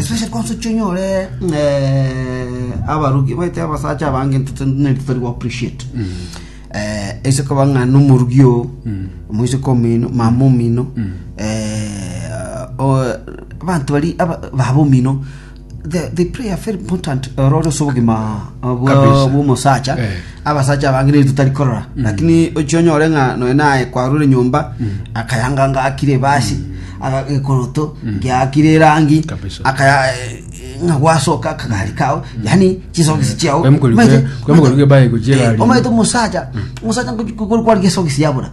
Especially kwanza ochia onyore eh, abarugi baite abasacha abange ntutu nende tori go appreciate eh, ase koba ng'a nomorugi oo moiseke omino mama omino eh, o- abanto bari aba- baba omino they, they play a very important role ase obogima bwa- Kabisa. bw'omosacha Eh. abasacha abange nigo totari korora lakini ochia onyore ng'a nonya naye kwarure nyomba akayanga ngakire ebasi aga- gekoroto giakire erangi Kabisa. akaya eh, ng'a gwasoka akagari kao yani chisokisi chiao Kwemukori- Maete- kwemukori kwebaye gochia Eh, egari. omaete omosacha omosacha kwari kwesogisi yabura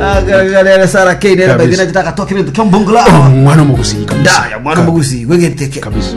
agarere sara keinere Kabisa. baithina gitagatoka ebinto kiombongula omwana omogusii kabisa. ndaya mwana omogusi gwegeteke kabisa